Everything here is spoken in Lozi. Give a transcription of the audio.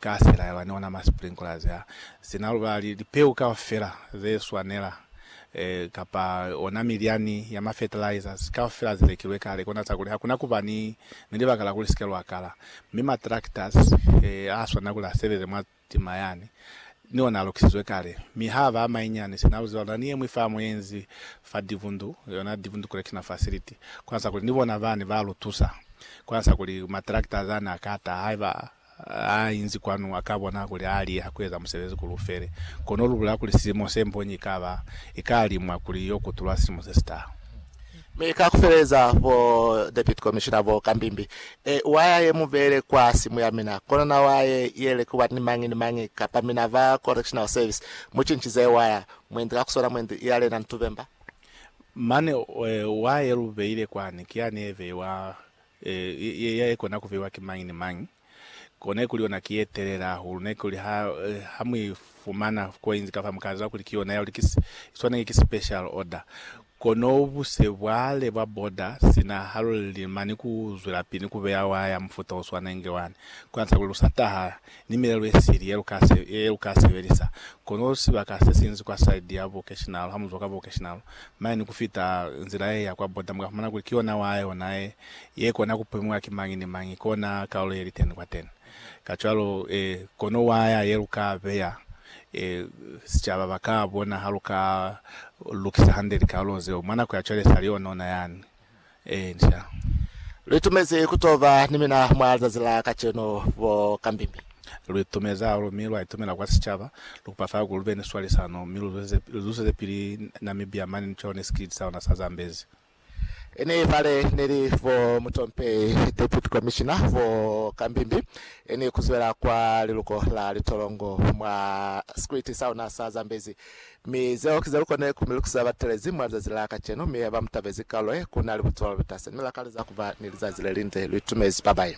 Ka sela yaba ni ona ma sprinklers a si na lubali, lipeu kaufela ze swanela, kapa ona milyani ya ma fertilizers kaufela ze lekilwe kale, kona za kuli hakuna kuba ni libaka la kuli sike lwa kala. Mi ma tractors a swanela kuli a sebeze mwa tima yani, ni ona a lukisizwe kale. Mi ha ba a mainyani, sina lu ziba, luna ni yeñwi famu ye nzi fa Divundu, yona Divundu Correctional Facility, kona za kuli ni bona bani ba lu tusa, kona za kuli ma tractors ani a ka ta haiba Ha inzi kwanu, a ka bona kuli ha liha ku eza musebezi kuli u fele. Kono lu bulela kuli silimo se mbonyi i ka ba, i ka limwa kuli i yo kutulwa silimo se si taha. Mi ka ku feleza, bo Deputy Commissioner bo ka mbimbi, e, wa ya ye mu beele kwa simu ya mina, kono na wa ye yele ku ba ni mañi ni mañi, kapa mina ba Correctional Service mu cincize waya, mwendi ka ku swana mwendi ya lena ni tubemba. Mane, e, wa ye lu beile kwani, ki yani ye beiwa e, ya ikona ku fiwa ki mañi ni mañi, ko ne kuli yona ki ye telele hahulu, ne kuli ha, ha mu i fumana coins ka fa mu ka ziba kuli ki yona ya lukis, i swaneki ki special order. Kono buse bwa le bwa border sina ha lu lima ni ku zwelapili ni ku beya waya ya mufuta o swanengi wani, ku yantisa kuli lu sa taha ni milelo ye sili ye lu ka sebelisa. Kono sibaka se sinzi kwa side ya bukeshinalo, ha mu zwa kwa bukeshinalo mane ni ku fita nzila ye ya kwa border, mu ka fumana kuli ki yona wa yona ye, ye kona ku pemiwa ki mañi ni mañi kona kalulo ye li teni kwateni. Kacwalo, kono waya ye lu ka beya, sicaba ba ka bona ha lu ka lukisa hande likalulo zeo. Mwa nako ya cwale sa li yonona yani. Encia. Lwi tumezi ku to ba ni mina mwa lizazi la kacenu, bo Kambimbi. Lwi tumezi hahulu mi lwa itumela kwa sicaba. Lu kupa fa ku lu be ni swalisano mi lu zweze pili Namibia mane ni cone sikiliti sa luna sa Zambezi. Ini fale ni li bo Mutompehi, Deputy Commissioner, bo Kambimbi, ini ku zwela kwa liluko la litolongo mwa sikiliti sa luna sa Zambezi. Mi zeo ki zelu kone ku mi lukisa batelezi mwa lizazi la kacenu, mi haba mutabezi kalu ye, ku nali butwalo lutase, mi la kaleza kuba ni lizazi lelinde lu itumezi babayi.